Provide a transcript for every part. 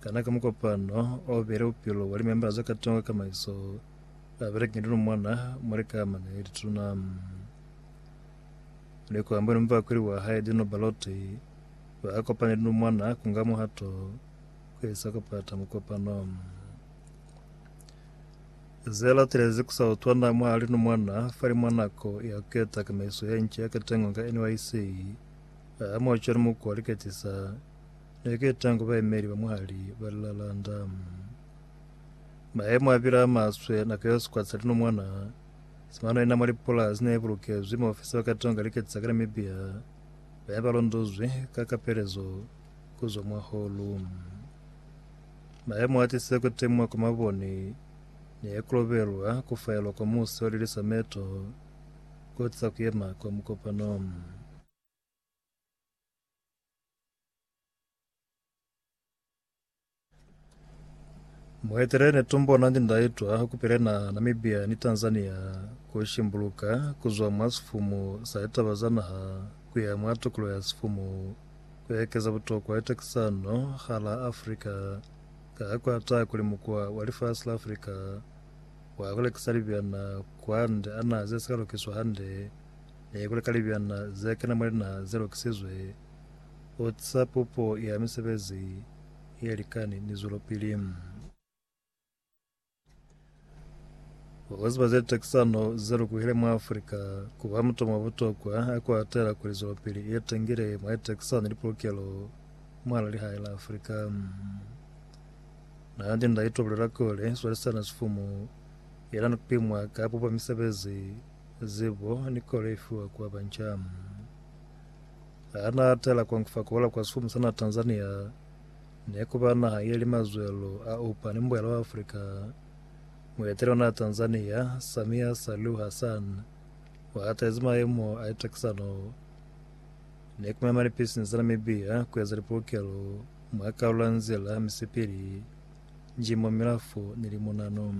Kana ka mukopano o bile bupilo bwa limembala za katongo ka kamaiso a beleka ni luna mwana mwa likamana ye lituna? Ni ku ambuhela mubakweli wa hae Dino Ballotti, ba kopana ni luna mwana ku nga muhato ku isa ku pata mukopano. Ze latelezi ku sa utwana mwa luna mwana fali mwa nako ya ku keta kamaiso ye nca ya katongo ka NYC, a amuha cwalo mukwa liketisa, Ne ki tangu baemeli ba mwali ba lilalanda. Maemo a pila a maswe nako yo sikwa sa linomwana si mano ina mwa lipulasi ne bulukezwi maofisa ba katonga liketisa ka Namibia ba ne ba londozwi ka kapelezo ku zwa mwa holu. Maemo a tise ku temwa kwa maboni ne ku lobelwa ku faelwa kwa musi wa lilisa meto ku tisa ku yema kwa mukopano. Muhetele ne tumbona ndi ndaitwa kupile na Namibia ni Tanzania ku shimbuluka kuzwa mwa sifumu sa litaba za naha kuya mwa tukulo ya sifumu ku ekeza butokwa itakisano ha la Africa ka ha kuata kuli mukwa wa lifasi la Africa wa kulekisa libyana kwande ana ze sika lukiswa hande Ee, kuli ka libyanna ze kena mwa linaha ze lokisizwe, u tisa pupo ya misebezi ye likani ni zwelopili. Ku ziba ze takisano ze lukuhile mwa Afrika ku ba mutomo wa butokwa ha ku atela kuli zwelopili ye tangile mwa litakisano ni lipulukelo mwalaa lihae la Afrika. Nandi Ndaitwah bulela kuli, swalisana sifumu yena ni kupimwa ka pupo ya misebezi, Zebo ni kolo ifiwa kwa bancamu. Hana atela kuangufa kola kwa sifumu sana Tanzania, nekuba naha ye li mazwelo a upa ni mbuela wa Afrika. Mueteli ona Tanzania, Samia Suluhu Hassan, uhatezi maemo a itakisano ni kumema lipisinisi za Namibia kueza lipulukelo mwa kalulo ya nzila misipili, njimo, milafo ni limunano.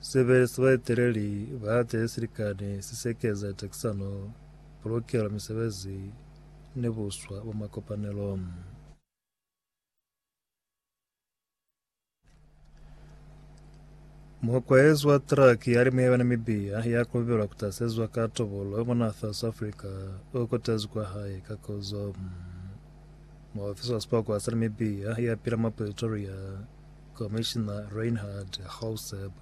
Sebele sa baeteleli ba hae silikani si sekeza takisano, pulukelo, misebezi, ni buswa bwa makopanelo. Mukwaezi wa traki ya limu yaba Namibia ya kulubilwa kutasezwa ka tobolo mwa naha South Africa o kotezi kwa hae ka kozo. Muofisi wa sipokwa sa Namibia ya pila mwa Pretoria Komishina Reinhard Hauseb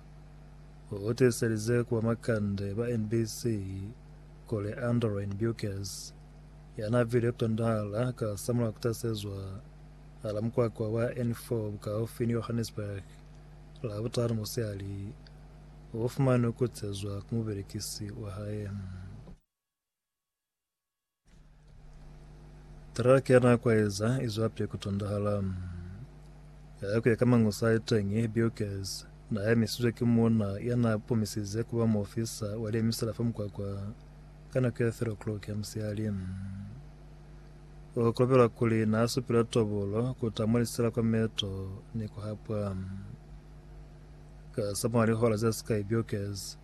u tiiselize ku bamakande ba NBC kuli Andrein Bukes, ya n'a vile Kandahar ka samulaho ku tasezwa hala mukwakwa wa N4 bukaufi ni Johannesburg Labutanu musihali, u fumanwe ku kutsezwa ku mubelekisi wa hae. Truck ya na kwaeza izwa pye kutondahala. Yaya kuya ka mangusa iteñi Bukes na ya emisizwe ki muuna ya na pumisize kuba muofisa wa liemisela fa mukwakwa ka nako ya 3 o'clock ya musihali. O kobelwa kuli na supile tobolo ku tamwa lisela kwa meto ni ku hapwa. Ka samwa lihola ze sikai Bukes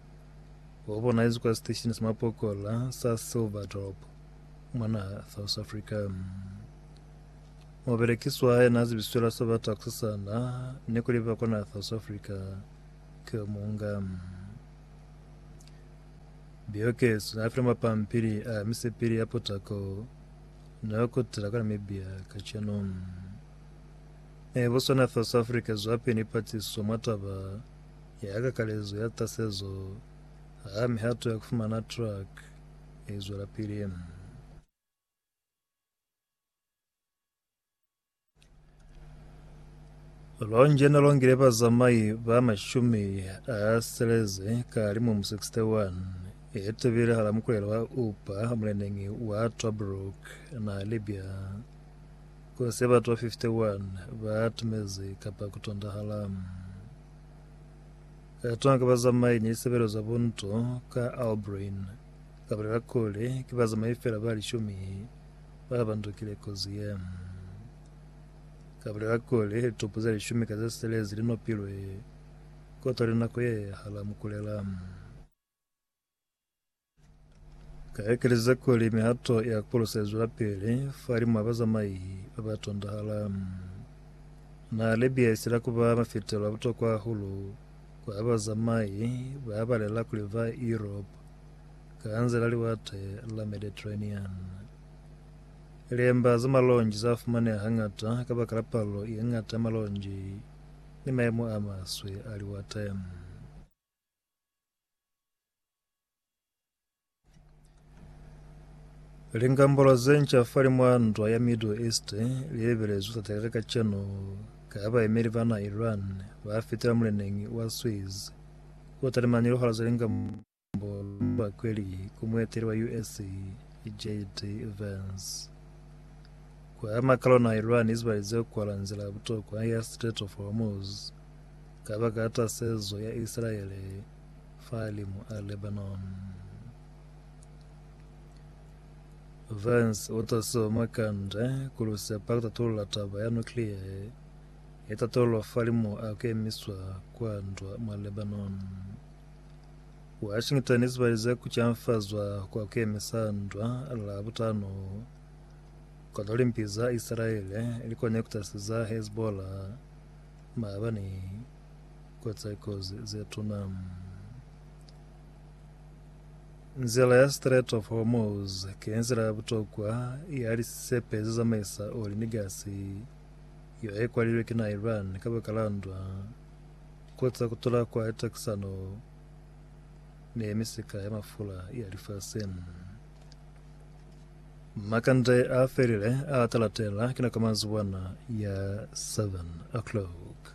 Wo bona izi kwa siteshini sa mapokola sa Silverdorp mwa naha South Africa. Mobelekiswa yena a zibiswela sa ba taksisana ne kuli ba kwa naha South Africa ke yo munga biyokeso na file mapampili a misepili ya potako na yo kutela kwa Namibia ka cheno. Ne boswana South Africa zwape ni patiso mwa taba ya kakalezo ya tasezo ha mihato ya kufumana track i zwelapili. Lonje ne longile bazamai ba mashumi a seleze ka limumu 61 e tebile hala mukulelo wa Upa muleneñi wa Tobruk na Libya ku se batwa 51 ba tumezi kapa kutondahala. Ka tona ki bazamai ni lisebelo za bunto ka Albrun. Ka bulela kuli, ki bazamai fela ba lishumi ba bandukile kozi ye. Ka bulela kuli, litupu ze lishumi ka ze sitelezi li nopilwe kotwa linako ye hala mukulela. Ka ekeleza kuli mihato ya kulusa izwelapili falimw'a bazamai babatondahala. Na Libya isila kuba mafitelo abutokwa hahulu kwa bazamai babalela kuli ba Europe ka nzila Liwate la Mediterranean. Liemba za malonji zafumaneha hañata kabakala palo yeñata ya malonji ni maemo amaswe a liwate. Lingambolo ze nca fali mwa ntwa ya Middle East li lebelezwi ku tatakela kacenu ka ha baemeli ba naa Iran ba fitela muleneñi wa Suez o talimani lihora za lingambolo mwa kweli ku mueteli wa US JD Vance. Ku ama kalo naa Iran izibalize ku kwala nzila ya butokwa ya Strait of Hormuz Kabakala tasezo ya Isilaele fahalimu a Lebanoni, Vance o tasiwa mwa kanda ku Lusepa ku tatulula taba ya nuklia ye ye tatolwa fahalimu a kemiswa kwa ndwa mwa Lebanoni. Washington isibalize ku canfazwa kwa kemisa ndwa Labutano kono limpi za Isilaele likone kutasiza Hezbollah Maaba ni koceko ze tuna. Nzila ya Strait of Hormuz ki nzila ya butokwa ya lisepe ze zamaisa oli ni gasi, yo e kwalilwe ki na Iran kabaka la ndwa, koca kutula kwa litakisano ni misika ya mafula ya lifasi. Makande a felile a talatela kina ka manzibwana ya 7 o'clock.